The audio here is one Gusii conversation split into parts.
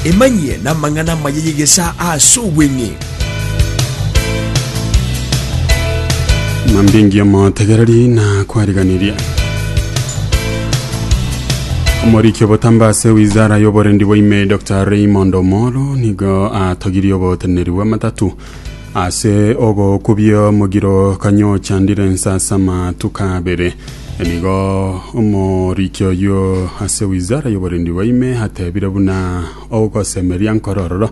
Emanyie namang'ana amaya y'egesaa aase obweng'e. Ng'ambi engiya motegereri na kwariganiria. Omoriki obotamba ase wizara y'oborendi bwa ime Dr Raymond Omolo nigo atogirie oboteneneri bw'amatatu Ase ogokubia omogiro kanyochandire nsasama tukabere. Nigo omoriki oyio ase wizara y'oborendi bwa ime atebire buna ogosemeria nkorororo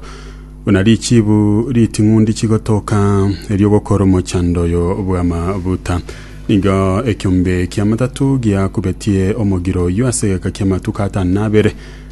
buna richibu riting'undi chigotoka erio gokora omochando oyo bw'amabuta. Nigo ekiombe ki'amatatu giakubetie omogiro oyio ase egeka ki'amatuko atano na abere.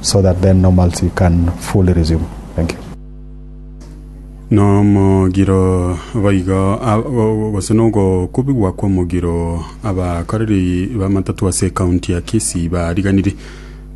so that then normalcy can fully resume. Thank you. Nomogiro boigo ab- go- gose nogokubigwa kw'omogiro abakoreri b'amatatu ase ekaunti ya Kisii bariganiri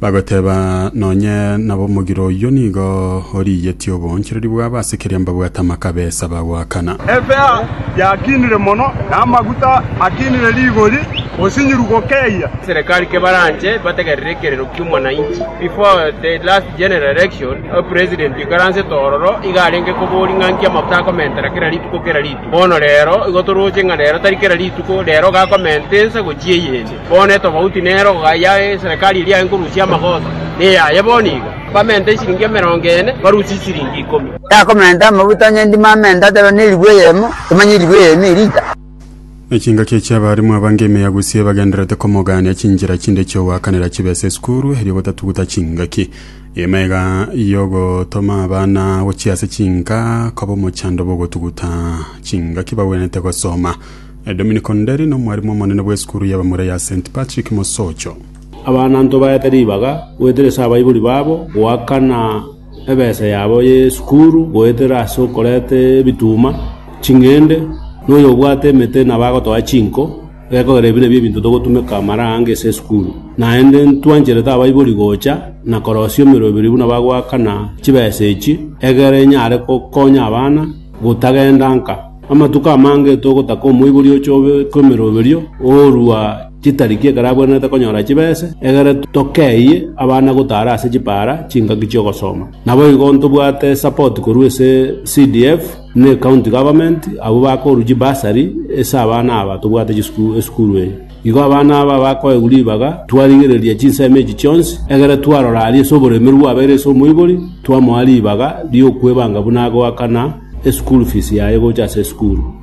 bagoteba nonye nabo omogiro oyio nigo origetie oboonchereri bwabo ase keria mbabwate amakabesa bagoakana. Efea yakinire mono, na amaguta akinire rigori, osinyiru gokeyia. Serekari kebaranche bategerere ekerero ki'omwananchi. Before the last general election, President oikaransete ororo iga arenge koboria ng'a nki amafuta akomentera kera rituko kera rituko. Bono rero igo toroche ng'a rero tari kera rituko, rero iga akomenta ense gochia eyende. Bono etofauti nero iga ya eserekari eria aye nkorusia amagoso neyaye bono iga. Bamenta esiringi emerongo ene, barusie esiringi ikomi. Yakomenta amafuta onye ndimo amenta ateba neribwe eyemo, tomanya eribwe eyemo erita. Ne chingaki echi abarimu abange ime ya Gusii ebagendererete komogaania chinchera chinde chi'ogoakanera chibe ase esukuru erio gotatuguta chingaki. Ime iga y'ogotoma abana gochia ase chinka koba omochando bw'ogotuguta chingaki bagwenerete gosoma. Dominic Onderi nomwarimu omonene bw'esukuru y'abamura ya St. Patrick Mosocho. Abanto baete ribaga goeteresa abaibori babo goakana. ebesa yabo y'esukuru, goetera ase okoreta ebituma, ching'ende, na oyobwate emete nabo agotoa chinko, gekogera ebi nabio ebinto togotumeka amara aange ase esukuru. Naende ntwancherete abaibori gocha na korosia emeroberi buna bagoakana chibesa echi, egere enyare gokonya abana gotagenda nka. Amatuko amange togotaka omoibori oche obe kw'emeroberio, orua. Chitariki ekero abwenerete konyora chibese, egere tokeyie abana gotaara ase chipaara chingaki chi'ogosoma. Naboigo ntobwate esapoti korwa ase CDF na ecounty government abwo bakorwa chibursary ase abana aba tobwate chisukuru esukuru eye. Igo abana aba bakoegwa ribaga, twarigereria chinsemo echi chionsi, egere twarora aria ase oboremeru bwabeire ase omoibori, twamoa ribaga ri'okwebanga buna agoakana eschool fees yaye gocha ase esukuru.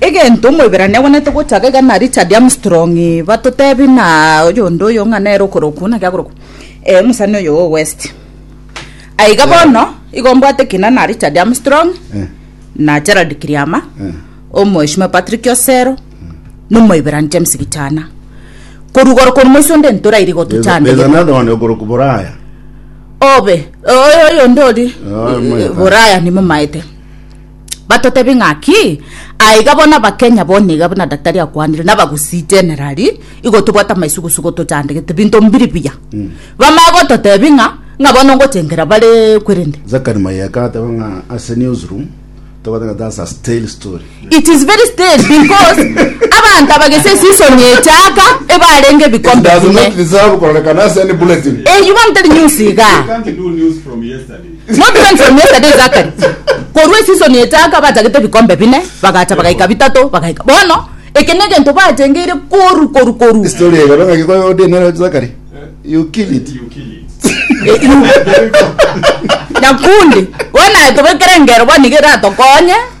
Egento Omoiberania agwenerete gochaka iga na Richard Armstrong batotebie na oyonde oyo ng'a nere okorokwa naki akorokwa ee omosani oyo o West. Aiga bono igo mbwate ekina na Richard Armstrong na Gerald Kiriama, Omoheshimiwa Patrick Osero na Omoiberani James Gichana. Korwa igoro korwa moiso onde ntorairi gotuchanda There's egento. another one okorokwa Boraya. Obe oyo oyonde ori Oh, Omoiberani. Boraya nimomaete. batotebie ng'aki, aiga bono abakenya bono iga buna daktari akwanire, na abagusii generali, igo tobwate amaisugusugu tochandegete, binto mbiri buya. Bamanye gototebia ng'a, ng'a bono ngochengera bare kwerende. Zakari Mayeka ateba ng'a ase newsroom tobwate ng'a that's a stale story. It is very stale because abanto abagese season echaka ebarenge It ebikombe does not bine. deserve kororekana ase any bulletin. Eh, you want tell news iga. You can't do news from yesterday. Notrance from yesterday Zachary korwa eseason echaaka batagete ebikombe bine bagacha bagaika bitato bagaika bono eke negento batengeire koru koru koru Story eye kaba ngaki koyo ode nero Zachary. You kill it. Nyakundi bono aye tobekere engero bono nigo eratokonye.